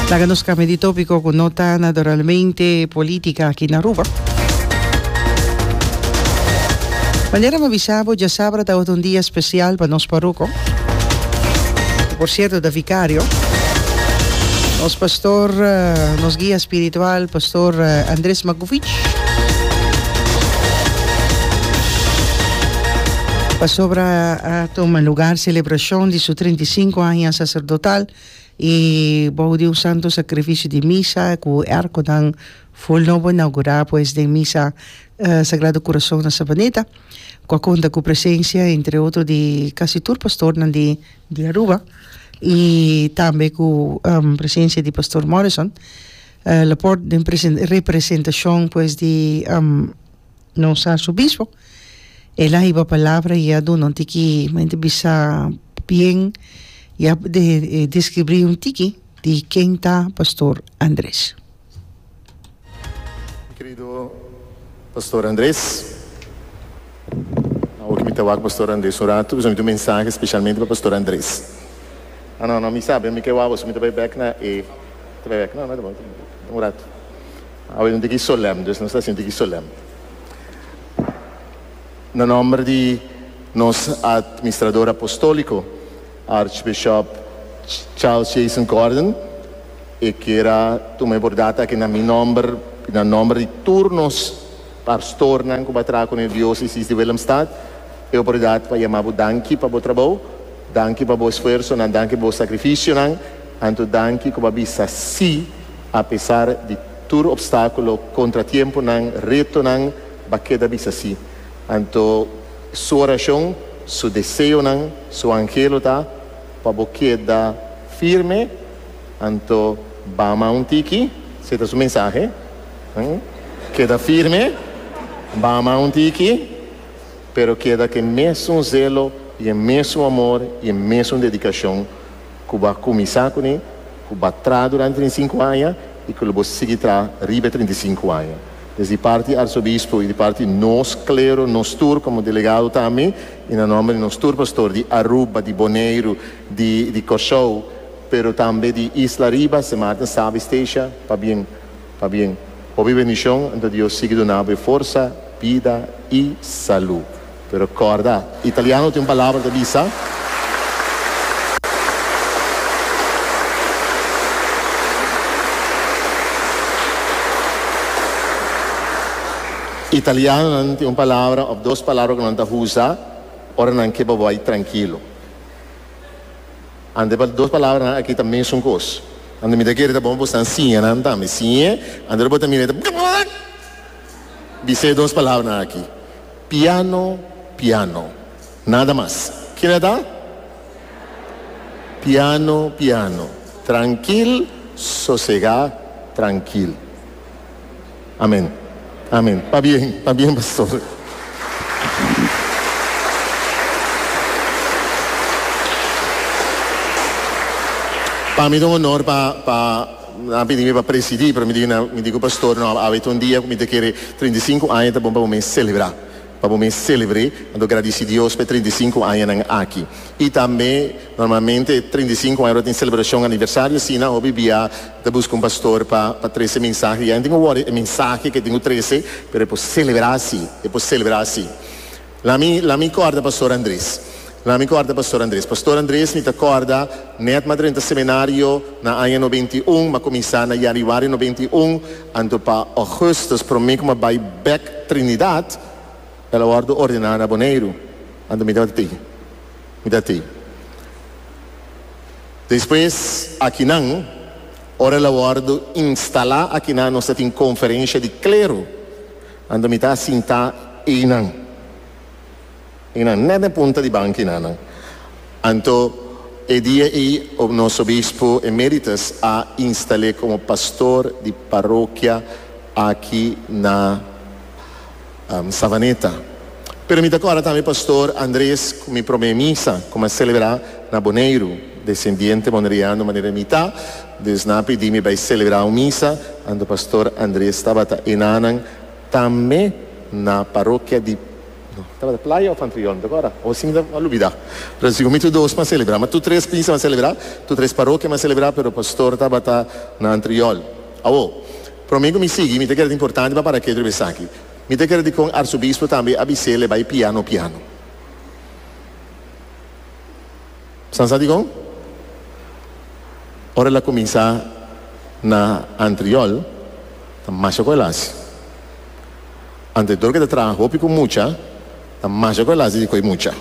Laga nos cambia di topico cu no ta nadoralmente politica aki na Aruba. Manera mi a bisa bo, diasabra tabata un dia special pa nos parroco, cu por cierto ta vicario, nos pastor, nos guia spiritual, Pastor Andres Mac. Pasobra a tuma lugar selebrashon di su trinta i sinku aña saserdotal i bou di un santu sakrifisio di misa ku èrkonan ful nobo inaugurá pues den misa Sagrado Corazon na Sabaneta ku a konta ku presensia entre otro di kasi tur pastornan di Aruba i tambe ku presensia di Pastor Morrison. Laporte den representacion pues di nos Arzobispo el a hiba palabra y a duna un tiki mente bisa bien y a describri un tiki di ken ta Pastor Andres. Mi kerido Pastor Andres. Awo ki mi ta wak Pastor Andres un ratu, mi tin un mensahe specialmente pa Pastor Andres. Ah no, no, mi sabi, mi ke wak boso, mi ta bai bek na e, mi ta bai bek, no, no, tabata, tabata, un ratu. Awe nos ta aki solem, dus nos ta sinti aki solem. Na nomber di nos Administrador Apostoliko, Archbishop Charles Jason Gordon, e kera tuma e bordad aki na mi nomber i na nomber di tur nos, Pastornan ku bo a traha kuné Dios i Sis di Willemstad, e oportunidat pa yama bo danki pa bo trabou, danki pa bo esfuersonan, danki pa bo sakrifisionan, anto danki ku bo a bisa sí apesar di tur opstákulo, kontratiemponan, retonan, bo a keda bisa sí. Anto Su orashon, Su deseonan, Su angelo ta pa bo keda firme, anto bama un tiki, si e ta Su mensahe. Keda firme, bama un tiki, pero keda ku e mesun zelo i e mesun amor i e mesun dedikashon ku bo a kuminsá kuné, ku bo a traha durante den sinku aña i ku lo bo sigui traha riba e trinta i sinku aña. Es di parti Arsobispo i di parti nos klero, nos tur komo delegado tambe i na nòmber di nos tur pastor di Aruba, di Boneiru, di Kòrsou, pero tambe di Isla Riba, Sint Maarten, Sabie, Statia, pabien. Pabien, hopi bendishon nta Dios sigui duna abo e forsa, bida i salu. Pero kòrda, italiano tin un palabra ta bisa, Italianonan tin un palabra òf dos palabra ku nan ta usa ora nan ke bo bai trankilo. Ante pa dos palabranan aki ta mesun kos. Ante mi ta kere ta bon bo san siña nan tambe. Siñe, ante lo bo ta mira e ta bkbkbk. Bis'é e dos palabranan aki. Piano, piano. Nada mas. Kila ta? Piano, piano. Trankil, sosegá, trankil. Amen amen pa bien pa bien pastor. Pa mi ta un honor pa pa nan a pidi mi pa presidi pero mi di nan mi di ku pastor no a wete un dia ku mi ta kere trinta i sinku aña ta bon pa bo mes selebrá pa bo mes selebre anto gradisi Dios pa e trinta i sinku añanan aki i tambe Normalmente e treinta i sinku aña lo tin selebrashon aniversario asina, hopi bia ta buska un pastor pa pa trese mensahe, ya e no tin ku wòri e mensahe ku e tin ku trese, pero e por selebrá así, e por selebrá así. Lami lami kòrda Pastor Andres, lami kòrda Pastor Andres. Pastor Andres mi ta kòrda nèt m'a drenta semenario na aña noventa i un, m'a kuminsá na yanüari noventa i un, anto pa ògùstus promé ku m'a bai bèk Trinidad, el a wòrdu ordená na Boneiru, anto mi tabata tei. Mi ta tin. Despues akinan, ora el a wòrdu instalá akinan, nos ta tin konferensha di klero anda mi ta a sintá einan. Einan nèt den punta di banki nannan. Anto e dia ei nos Obispo Emeritus a instal'é komo pastor di parokia aki na Savaneta. Pero mi ta kòrda tambe Pastor Andres ku mi promé misa ku mi a selebrá na Boneiru, desendiente boneriano manera mi ta, dus nan a pidi mi bai selebrá un misa anto Pastor Andres tabata i nannan tambe na parokia di, no, tabata Playa òf Antriol, mi ta kòrda, o si mi ta lubidá. Pero sigur mi tur dos mi a selebrá, mi tur tres misa mi a selebrá, tur tres parokia mi a selebrá, pero Pastor tabata na Antriol. Awor, promé ku mi sigui, mi ta kere ta importante pa para ke otro bes esaki. Mi ta kere di kon Arzobispo tambe a bis'é leba e piano piano. San sa dikon? Ora el a kuminsá na antriòl, ta masha ku el hasi. Antetor ku e ta traha hopi ku mucha, ta masha ku el hasi di ku e mucha.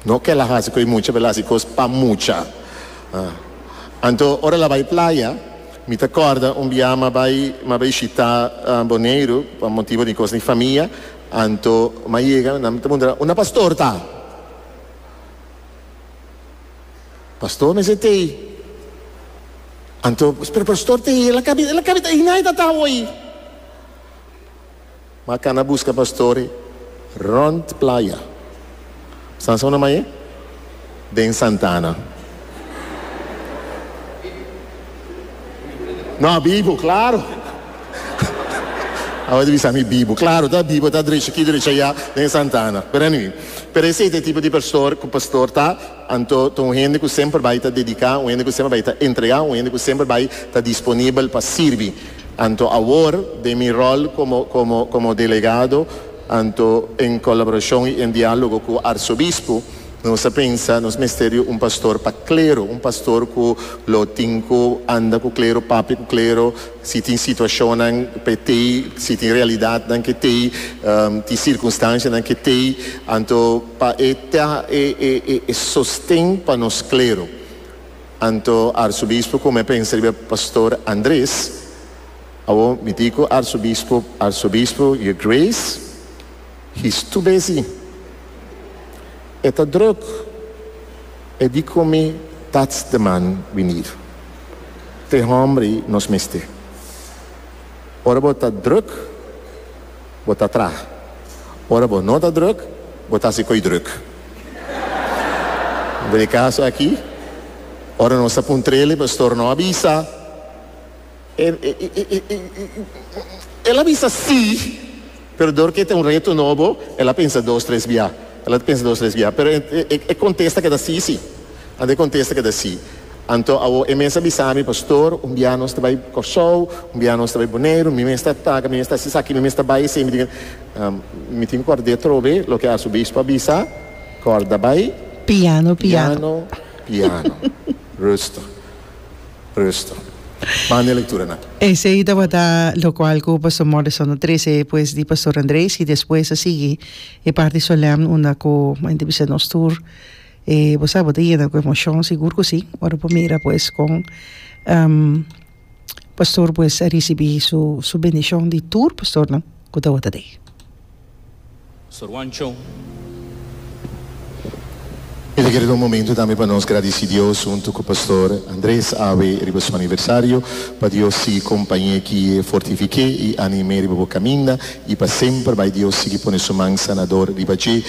No ke el a hasi ku e mucha, pero el a hasi kos pa mucha. Anto, ora el a bai playa, Mi ta corda un biaha ma bai ma bai shita Boneiru pa motibo di cos di famia anto ma yega nan ta puntra unda pastor ta? Pastor mester ta ei anto pero pastor ta ei el a cabi el a cabi ta ei nadie ta ta awor ei. Ma ka na buska pastori rond playa. San Sona mai e? Den Santa Ana. No, bibu, claro. Awor ta bisa mi bibu. Claro ta bibu, ta drecha aki, drecha allá den Santa Ana. Pero anyway, pero esey ta e tipo di pastor cu pastor ta. Anto ta un hende ku semper bai ta dediká, un hende ku semper bai ta entregá, un hende ku semper bai ta disponibel pa sirbi. Anto awor den mi ròl komo komo komo delegado, anto en kolaborashon i en diálogo ku arsobispo, nos a pensa nos mester di un pastor pa klero, un pastor ku lo tin ku anda ku klero, papia ku klero, si tin situashonnan pa e tei, si tin realidatnan ke tei, ti sirkunstansianan ke tei, anto. Pa e teha e e e e sosten pa nos klero. Anto Arsobispo ku me pensa riba Pastor Andres, awor mití ku Arsobispo, Arsobispo Your Grace, he's too busy. E ta drùk, e dikomi that's the man we need. Te hòmbri nos mester. Ora bo ta drùk. Bo ta traha. Ora bo no ta druk, bo ta hasi koe druk. Den e kaso aki, ora nos ta pun trele, pastor no a bisa. E, e, e, e, el a bisa sí, pero dor ke ta un reto nobo, el a pensa dos, tres biaha. El a pensa dos, tres biaha, pero e, e, e kontesta keda sí, sí. Anto e contesta keda si. Anto awo e mes a bisa mi, Pastor, un bia nos ta bai Corsou, un bia nos ta bai Boneiru, mi mes ta taga, mi mes ta haci esaki, mi mes ta bai esei, mi tin ke, mi tin kòrd'é trobe loke Arzobispo a bisa, Kòrda bai. Piano, piano. Piano, piano. Rusto, rusto. Manda e lecturanan. Esei tabata locual cu Pastor Morrison a trece despues di Pastor Andres y despues a sigui e parti solemn unda cu bai ta bisa nos tur. E bo sa bo ta yena ku emoshon sigur ku si ora bo mira pues kon pastor pues a risibi su su bendishon di tur pastornan ku tabata dei. Pastor Juancho. Mi ta kere ta un momento tambe pa nos gradisi Dios huntu ku Pastor Andres Awe riba su aniversario, pa Dios sigui kompañ'é, gui'é, fortifik'é i anim'é riba bo kaminda i pa semper bai Dios sigui pone su man sanador riba dje.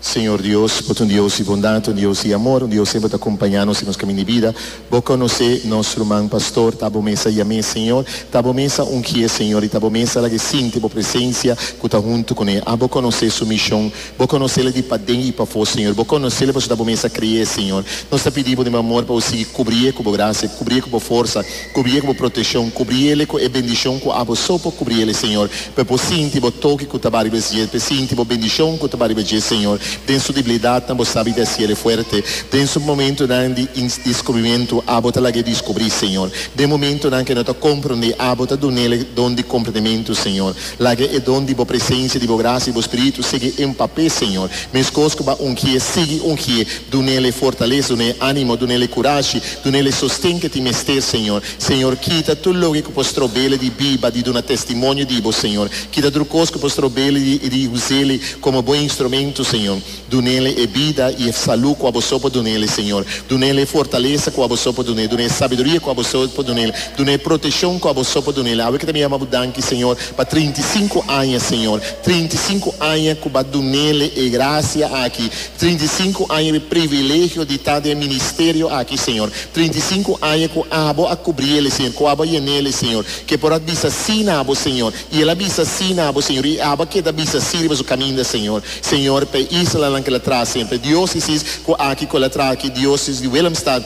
Señor Dios, bo ta un Dios di bondad, un Dios di amor, un Dios semper ta acompaña nos den nos camin di bida. Bo conoce nos ruman pastor, ta bo mes a yam'e Señor, ta bo mes a ungi'e Señor y ta bo mes a lag'e sinti bo presencia cu ta hunto cu n'e. A bo conoce su mision, bo conocele di paden y pafo Señor, bo conocele pasobra bo mes a cre'e Señor. Nos ta pidibo den bo amor pa bo sigui cubri'e cu bo gracia, cubri'e cu bo forsa, Kubrí e ku bo proteshon, kubrí ele ku e bendishon ku abo so por kubrí ele, Señor. P'e bo sinti bo toki ku ta ba riba es dje, p'e sinti bo bendishon ku ta ba riba dje, Señor. Den su diblidatnan bo sabi di hasi ele fuerte. Den su momentunan di indiskubrimentu, abo ta lag'é diskubrí, Señor. Den momentunan ku e no ta komprondé, abo ta dun'el e don di komprendementu, Señor. Laga e don di bo presensia, di bo grasia, di bo Spiritu sigui empap'é, Señor. Meskos ku bo a ungié, sigui ungié. Dun'el e fortalesa, dun'é e animo, dun'el e kurashi, dun'el e sosten ke tin mester, Señor. Señor, kita tur loke ku por strobele di biba, di duna testimonio di Bo, Señor. Kita tur kos ku por strobele di di usele komo Bo instrumento, Señor. Dun'ele e bida i e salu ku Aboso por dun'ele, Señor. Dun'el e fortalesa ku Aboso por dun'é, dun'é e sabiduria ku Aboso por dun'el, dun'é e proteshon ku Aboso por dun'el. Awe ke ta mi yama Bo danki, Señor, pa trinta i sinku aña, Señor. Trinta i sinku aña ku Bo a dun'ele e grasia aki. Trinta i sinku aña e privilegio di ta den e ministerio aki, Señor. Trinta i sinku aña ku abo a kubrí el, Señor, ku abo a yena el, Señor. Ke por a bisa sí na abo, Señor, i el a bisa sí na abo, Señor, i abo a keda bisa sí riba su kaminda, Señor. Señor, pa e islanan ku el a traha sempri, diosesis ku aki ku el a traha aki, diosesis di Willemstad,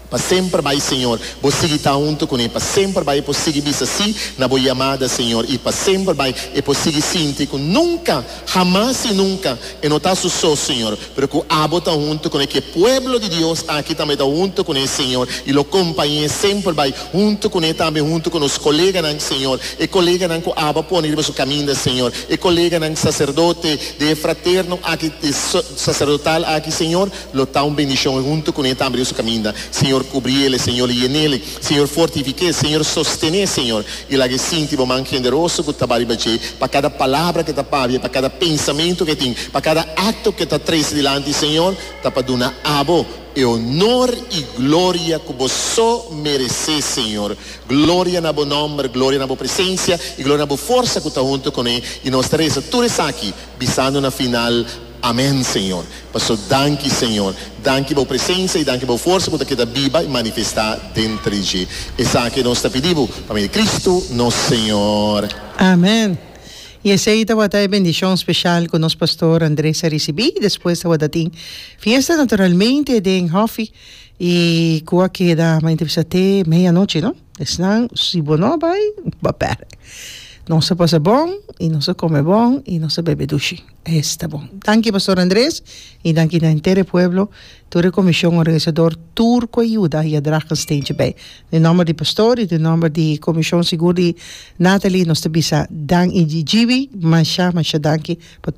Pa semper bai Señor, bo sigui ta huntu cu ne, pa semper bai e por sigui bisa sí na bo yamada Señor, y pa semper bai e por sigui sinti cu nunca, hamas y nunca e no ta su so Señor, pero cu abo ta huntu cu ne, cu e pueblo di Dios aki tambe ta huntu cu ne Señor, y lo compañe semper bai huntu cu ne tambe huntu cu nos coleganan Señor, e coleganan cu abo a pone riba su caminda Señor, e coleganan sacerdote de e fraterno aki, de e sacerdotal aki Señor, Lo ta un bendicion e hunto cune tambe den su caminda. Señor cubriele, Señor yenele, Señor fortifique, Señor sostene, Señor y lague sinti bo man generoso cu taba riba dje pa cada palabra que ta pabia, pa cada pensamento que tin, pa cada acto que ta trece dilanti, Señor, ta pa duna abo e honor y gloria cu bo so merece, Señor, gloria na bo nomber, gloria na bo presencia y gloria na bo forsa cu ta hunto cune y nos ta reza tur esaki bisando na final. Amen Señor. Paso danki Señor. Danki bo presensa y danki bo forsa cu ta keda biba y manifesta den tres dje. Esaki nos ta pidi bo pa medio di Cristo nos Señor. Amen. Y esey tabata e bendicion special cu nos Pastor Andres a ricibi. Despues tabata tin fiesta naturalmente den Hofi y cu a keda mayormente bisa te medianochi no. Esnan si bo no bay bo a perde. Nos a pasa bon y nos a come bon y nos a bebe dushi. Es ta bon. Danki Pastor Andres i danki na henter e pueblo, tur e comision organisador, tur cu a yuda i a draga un steentje bij. Den nomber di Pastor i den nomber di comision sigur di Nathalie nos ta bisa dan i di Jivi masha masha danki pa tur.